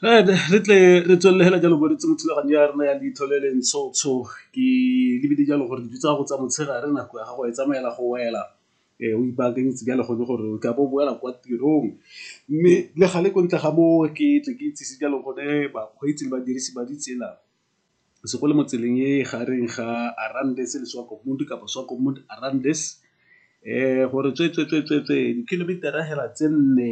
Re tle re tswelele fela jalo bo re itse mo thulaganyo ya rona ya leitlho le le ntsho ntsho ke lebile jalo gore dilo tsa gago tsa motshegare nako ya gago e tsamaela go wela o ipaakanyetse jalo gone gore o ka bo o boela kwa tirong. Mme le gale ko ntle ga moo ke tle ke itsise jalo gone bakgweetsi le badirisi ba ditsela. se go le mo tseleng e gareng ga Arandase le Swakopmund kapa Swakopmund Arandase eh gore tswe tswe tswe tswe tswe dikilomitara hela tse nne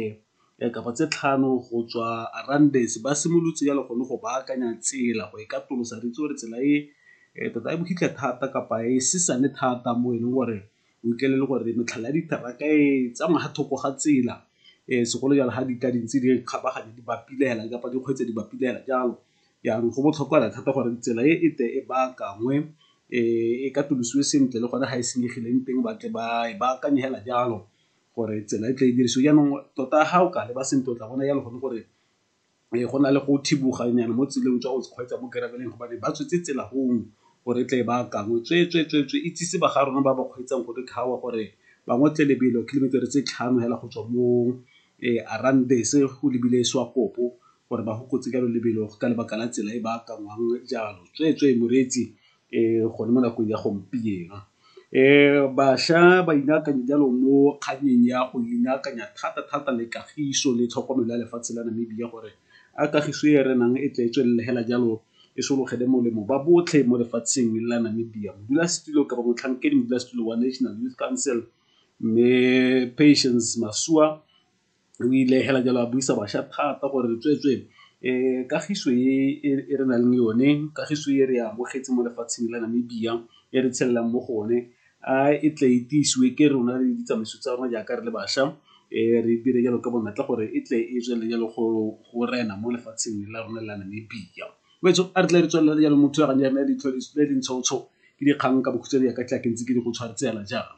eh, kapa tse tlhano go tswa Arandase ba simolotse ya le gone go baakanya tsela go e ka tolosa re itse gore tsela e eh, tota e bohitlhe thata kapa e sesane thata mo e leng gore o ikele le gore metlhala ya diteraka e tsamaya ga thoko ga tsela eh, segolo jalo ga di ka dintse di kgabaganya di bapilela kapa dikgweetse di bapilela jalo Jaanong go botlhokwa fela thata gore tsela e e tle e baakangwe e katolosiwe sentle le gone ga e senyegileng teng ba tle ba e baakanye fela jalo gore tsela e tle e dirisiwe. Jaanong tota ga o ka leba sentle o tla bona jalo gone gore go na le go thiboganyana mo tseleng jwa go kgweetsa mo gravel-eng gobane ba tswetse tsela gongwe gore e tle e baakangwe tsweetswee, tsweetswee, itsise ba ga rona ba ba kgweetsang gore bangwe tle lebelo kilometer-e tse tlhano fela go tswa mo E arang bese go lebile Swakopo gore ba gokotse jalo lebelo ka lebaka la tsela e ba akanngwang jalo tsweetswee moreetsi e gone mo nakong ya gompieno. E bašwa ba inaakanye jalo mo kgannyeng ya go inaakanya thata thata le kagiso le tlhokomelo ya lefatshe la Namibia gore a kagiso e re nang e tle e tswelele hela jalo e sologele molemo ba botlhe mo lefatsheng la Namibia. Modulasetilo kapa motlhankedi modulasetilo wa National Youth Council Mme Patience Masualle o ile fela jalo a buisa bašwa thata gore tsweetswee kagiso e re nang le yone, kagiso e re amogetse mo lefatsheng la Namibia e re tshelelang mo go one a e tle e tiisiwe ke rona le ditsamaiso tsa rona jaaka re le bašwa re dire jalo ka bonatla gore e tle e tswelele jalo go rena mo lefatsheng la rona la Namibia. wetso a re tle re tswelela jalo mo thulaganyo ya rona ya leitlho le lentshotsho ke dikgang ka bokhutshwane ya ka tla ke ntse ke di go tshwaretseela jalo